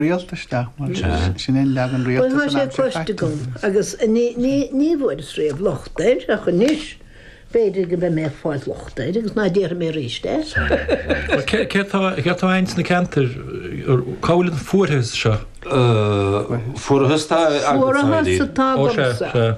Rialtas isteach mar sin é an leagan rialta san aimsir chaite. Bhuel, tá sé cloiste agam agus ní bhfuaireas riamh locht air ach anois, b'fhéidir go mbeidh mé ag fáil locht air agus ná déarfaidh mé arís é. Céard atá ins na ceantair, cá bhfuil an fuarthas seo? Fuarthas atá agamsa.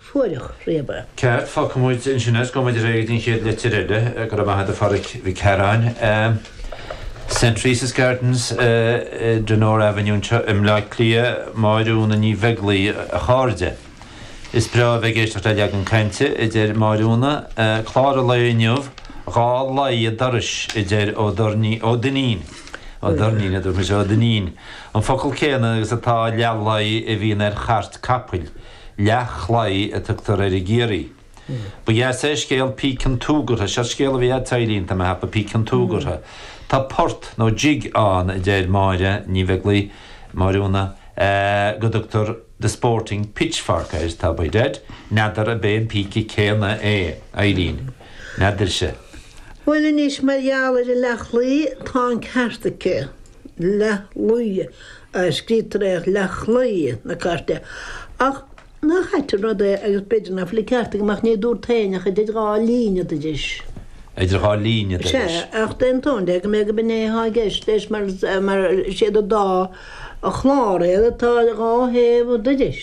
fuaireach riamh. Ceart, fágfaidh muid ansin a's go muid réidh don chéad litir eile? Go raibh maith a't a Phadhraic Mhic Carráin. St. Teresa's Gardens, Donore Avenue anseo i mBleá Cliath, Máire Úna Ní Bheaglaoidh a chairde. Is breá a bheith ag éisteacht le leagan cainte, a deir Máire Úna. Clár an lae inniu, dhá laí an dorais a deir Ó Doirnín, Ó Duinnín, Ó Doirnín a dúirt mise, Ó Duinnín, an focal céanna agus atá leathlaí a bhíonn ar chairt capaill. Leathchlaí a tugtar air i gCiarraí. Ba dheas é scéal Píc an tsúgartha, seo scéal a bhí a't, a Eilín, tá mé ag ceapadh, Píc an tsúgartha. Tá port, nó jig, ann a deir Máire Ní Bheaglaoi, Máire Úna, go dtugtar The Sporting Pitchfork air, tá a fhios a'd, n'fheadar ab é an píce céanna é, Eilín, n'fheadarsa. Bhuel anois, mar gheall ar an leathchlaí, tá an ceart aici. leathlaí a scríobhtar é ach leathchlaí na cairte. Ach nach ait an rud é agus b'fhéidir ná fuil an ceart agam ach ní dúrt féin ach idir dhá laí an dorais. Idir dhá laí an dorais. Sea, ach d'aontóinn de go mbeadh, gob in é atá i gceist leis mar mar is iad an dá chlár iad atá dhá thaobh an dorais.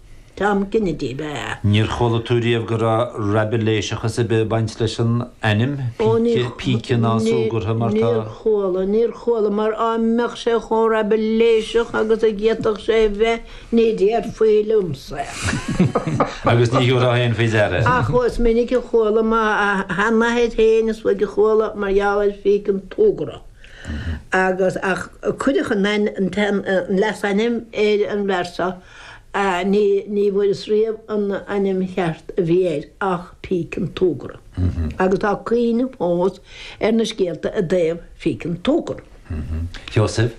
Tom Kennedy ab ea é. Níor chuala tú riamh go raibh raibiléiseachas ar bith ag baint leis an ainm? Píce, píce an tsúgartha mar tá. Ó níor chuala, níor chuala, mar dá mbeadh sé chomh raibiléiseach agus a d'fhéadfadh sé a bheith ní déarfaí liomsa é. Agus ní thiúrfá féin faoi deara é. Ach is minic a chuala mo sheanathair féin, is uaidh a chuala, mar gheall ar phíce an tsúgartha. Agus, ach cuireadh an leasainm ar an bhfear seo. Ní bhfuaireas riamh an ainm cheart a bhí air ach Píc an tSúgartha agus tá cuimhne fós ar na scéalta i dtaobh Phíc an tSúgartha. Sheosaimh.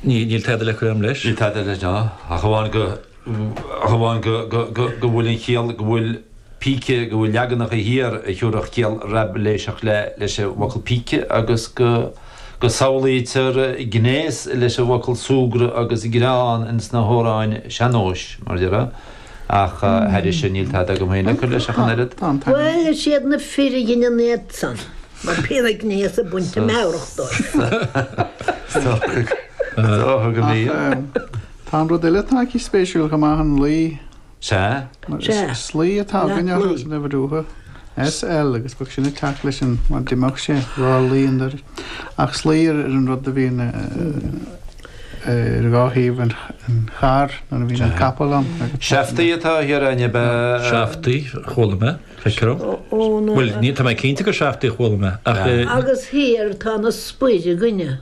Níl tada le cur agam leis. Níl tada leis ná, ach amháin go bhfuil an chiall, go bhfuil. píce, go bhfuil leaganacha thiar a thiúrfadh ciall Raibiléiseach leis an bhfocal píce, agus go samhlaítear gnéas leis an bhfocal súgradh agus greann in sna hamhráin sean-nóis, mar dhea. Ach thairis sin, níl tada agam féin le cur leis ach an oiread. Bhuel, is iad na fir a dhein an éacht san, mar bhí an gnéas ag baint na meabhrach dóibh. Tá an rud eile atá aici spéisiúil go maith, an laí. Sea, mar is slí atá againn orthu san in Uíbh Ráthach. SL, agus bheadh sin ag teacht leis an, mar d'imigh sé dhá laí an dorais. Ach slí ar an rud a bhíonn ar dhá thaobh an chairr nuair a bhíonn an capall ann agus. Seaftaí atá thiar, an ab ea. Seaftaí, chuala mé, feictear liom. Ó na. Bhuel, ní, tá mé cinnte gur seaftaí a chuala mé, ach. Agus thiar tá na spoir againne.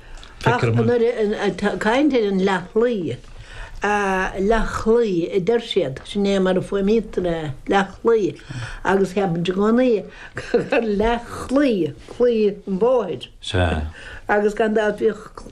Ach ag caint ar an leath-chlaí, leath-chlaí a deir siad, sin é mar a fuaimnítear é, leath-chlaí, agus cheapainn i gcónaí gur leath-chlaí, claí an bhóthair, agus gan dabht bhíodh